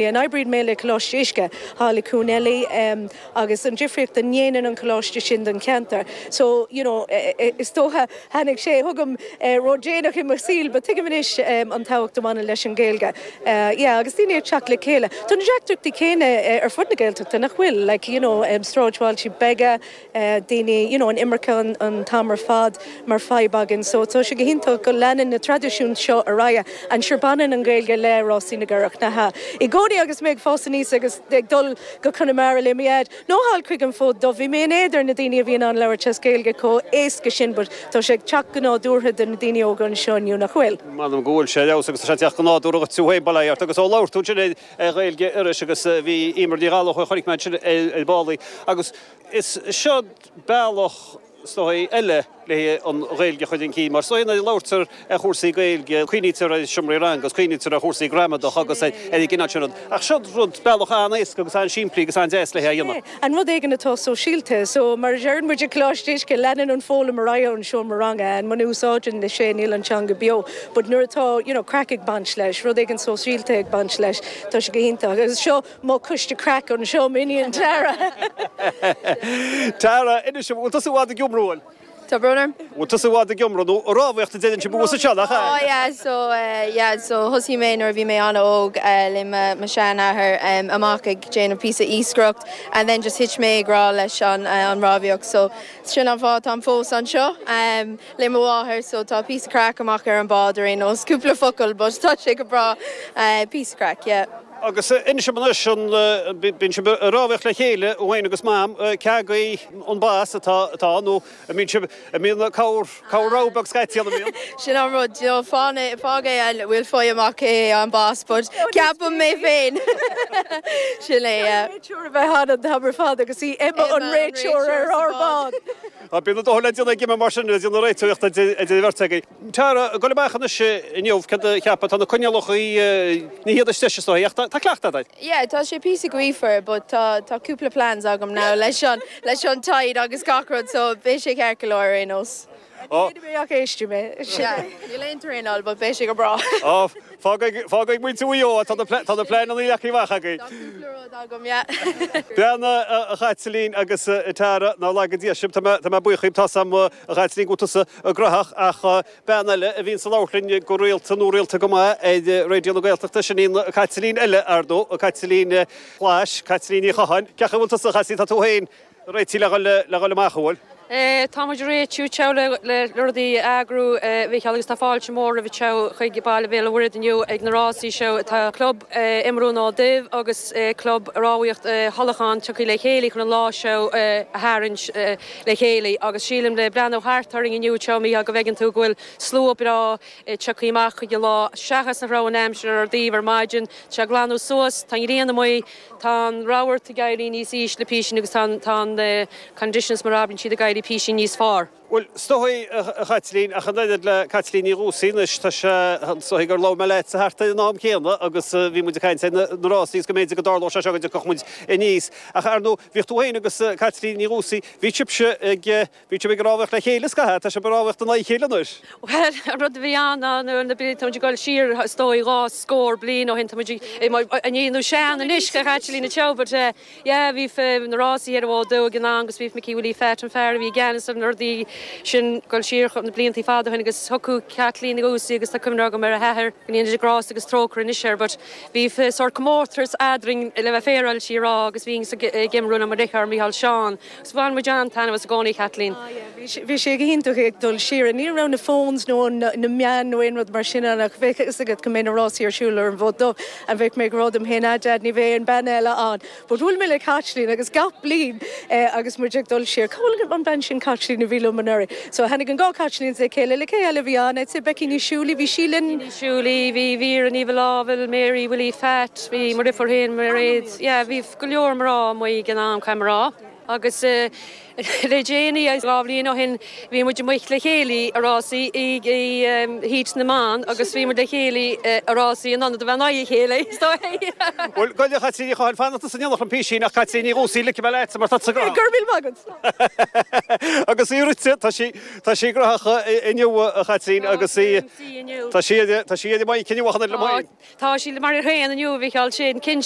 And oibríonn mé le Coláiste Uisce thall i Cuan Eilí agus an difríocht a ndéanann an coláiste sin don cheantar. So, you know, is dócha, tháinig sé chugam ródhéanach i mo shaol but tuigim anois an tábhacht a bhaineann leis an Ghaeilge. Yeah, agus daoine ag teacht le chéile. Tá na deacrachtaí céanna ar fud na Gaeltachta, nach bhfuil? Like, you know, sráidbhailte beaga. daoine, you know an imirce an t-am ar fad mar fadhb againn so tá sé go hiontach go leanann na traidisiúin seo ar aghaidh and sure baineann an Ghaeilge le Rásaí na gCurachaí i gcónaí agus mé ag fás aníos agus ag dul go Conamara le mo Dhaid nó thall chuig an Fód Dubh bhí mé in éad ar na daoine a bhí in ann labhairt as Gaeilge chomh héasca sin but tá sé ag teacht go nádúrtha do na daoine óga anseo inniu, nach bhfuil? M'anam go bhfuil sé ar fheabhas agus tá sé ag teacht go nádúrtha duit tú féin, bail ó Dhia ort agus ó labhair tú ansin ar Ghaeilge Iorrais agus bhí Emer Ní Ghallachóir a chonaic mé ansin ar ball í agus. Is seod bealach is dóichí eile leis an Ghaeilge a chur chun cinn, mar is dóichí nuair a labhraítear ar chúrsaí Gaeilge, cuimhnítear ar sheomraí ranga agus cuimhnítear ar chúrsaí gramadach agus ar an gcineál sin rud. Ach seod rud, bealach an-éasca agus an-simplí agus an-deas le hé a dhéanamh. An rud éigin atá sóisialta. So, mar a deireann muid ag Coláiste Uisce, leanann an foghlaim ar aghaidh ón seomra ranga and muna úsáideann sé, níl an teanga beo. But nuair atá, you know, craic ag baint leis, rud éigin sóisialta ag baint leis, tá sé go hiontach. Agus seo. Mo coiste craic anseo, m'iníon Tara. Tara, Inis dom, bhfuil tusa i bhfad ag iomramh? Bhuel. Tá brón orm. Bhfuil tusa i bhfad ag iomramh nó ag rámhaíocht a deireann sibh i Maigh Eo sílim, nach ea? Á yeah, so eh, yeah, so thosaigh mé nuair a bhí mé an-óg le mo, mo sheanathair, em, amach ag déanamh píosa iascaireacht and then just thit mé i ngrá leis an, eh, an rámhaíocht so sin an fáth atá fós anseo, em. le mo mháthair so tá píosa craic amach ar an bád ar aon nós, cúpla focal but tá sé go breá, píosa craic, yeah. Agus inis dom anois, an mbíonn sibh ag rámhaíocht le chéile, iníon agus Mam, cé agaibh an boss atá, atá, nó an mbíonn sibh, an mbíonn corr, corr-row beag scaití ann, an mbíonn? Sin an rud, d'you know, fán é, fág é an bhfuil faigh amach cé hé an boss but ceapaim mé féin, sin é, yeah. Tá réiteoir a bheith ann an t-am ar fad agus í Emma an réiteoir ar ár mbád! Bíonn a dóthain le déanamh ag Emma mar sin, ag déanamh réiteoireacht idir an bheirt agaibh. Tara, ag gabháil amach anois inniu, céard a cheapfá, tá na coinníollacha, ní hiad is deise is dóigh, ach tá cleachtadh agat air. Yeah, tá sé píosa gaofar but tá, tá cúpla plans agam now leis an, leis an tide agus gach rud so beidh sé ceart go leor ar aon nós. Níl aon traenáil but beidh sé go breá. Fág faoi, fág faoi mhuintir Mhaigh Eo é, tá na, tá na pleanannaí leagtha amach againn. Tá cúpla rud agam, yeah. Bhuel, a Chaitlín agus a Tara, nár laga Dia sibh, tá mé, tá mé buíoch dhaoibh, tá 's a'm a Chaitlín go bhfuil tusa go gnaitheach ach bean eile a bhíonn ag labhairt linn go rialta, nó rialta go maith, ar Raidió na Gaeltachta, sin í an Caitlín eile, ar ndóigh, Caitlín Clash, Caitlín Ní Chatháin, cén chaoi a bhfuil tusa a Chaitlín, tá tú féin, Réitigh le dhul le dhul amach, an bhfuil? Tá muid ag réitiú teo le rudaí a eagrú, a Mhicheáil, agus tá fáilte mhór romhat teo chuig Baile Bhéal an Mhuirthead inniu ag na rásaí seo. Tá Club Iomramh an Fhóid Duibh agus Club Rámhaíocht Thulachán tioctha le chéile chun an lá seo a tharraingt le chéile agus sílim le breathnú thart orainn inniu teo, Micheál, go bhfeiceann tú go bhfuil slua breá tioctha amach chuig an lá seachas nach raibh an aimsir ar ár dtaobh ar maidin. Tá sé ag glanadh suas, tá an ghrian amuigh. Tá an rabharta ag éirí níos ísle písín agus tá an, tá an, conditions mar a abrann siad ag éirí písín níos fearr. Bhuel, is dóichí, a Chaitlín, ach an oiread le Caitlín Ní Dhúsaí anois, tá sé, is dóichí gur labhair mé leatsa thart ar an am céanna agus a bhí muid ag caint ar na rásaí is go mb'fhéidir go dtarlódh sé seo go dtiocfadh muid aníos. Ach, ar ndóigh, bhíodh tú féin agus Caitlín Ní Dhúsaí, bhí sibhse ag. Bhí sibh ag rámhaíocht le chéile, scaitheamh. Tá sibh ag rámhaíocht in aghaidh a chéile anois. Bhuel, an rud a bhí ann ná nuair a bhreathnaím ag goil siar, is dóigh, dhá scór bliain ó shin, tá muid ag déanamh sean anois, a Chaitlín, ciao per te! yeah, bhí na rásaí ar an bhFód Dubh ag an am agus bhí Micí Willie Phat, an fear a bhí i gceannas ar na rudaí sin, ag dul siar na blianta fada ó shin agus thiocfadh Caitlín Ní Dhúsaí agus tá cuimhne agam ar a hathair, go ndéana Dia grásta agus trócaire anois air, but bhí sórt comórtas eadrainn le bheith féaráilte is í a rá agus bhíothas ag iomramh le mo dheartháir Micheál Seán. 'S bhain muid an-taitneamh as i gcónaí, a Chaitlín. Ah yeah, bhí sé, bhí sé go hiontach ag dul siar. Ní raibh na phones nó na meáin nó aon rud mar sin ann ach bheadh a fhios agat go mbeidh na rásaí ar siúl ar an bhFód Dubh and bheadh mé ag rá liom féin, ah Dad, ní bheidh aon bean eile ann but bhuail mé le Caitlín agus gach bliain agus muid ag dul siar, cá bhfuil an bhean sin Caitlín a bhí liom anuraidh? So tháinig an dhá Caitlíns le chéile, le cé eile a bhí ann? I'd say Becky Ní Shúilí, bhí sí linn. Becky Ní Shúilí, bhí Vera Ní Mhaolfhábhail, Mary Willie Phat, bhí mo dheirfiúr féin, Mairéad, yeah, bhí. go leor mná amuigh ag an am, caithfidh mé a rá, agus le déanaí, dhá bhliain ó shin, bhí muid amuigh le chéile i rásaí i Heat na mBan agus bhí muid le chéile i rásaí in ionad a bheith in aghaidh a chéile, is dóigh. Bhuel, Gaeil le Caitlín Uí Chadhain, fanacht is an iolar chun písín, ach Caitlín Ní Dhúsaí, ligfidh mé leatsa mar tá tú sách cruógach! Go raibh míle maith agat! Agus í rite, tá sí, tá sí graitheach inniu, a Chaitlín, agus í, tá sí, tá sí ar a boinn cinniúnach anoir le moill. Tá sí mar a haon inniu, a Mhicheál, sin cinnt.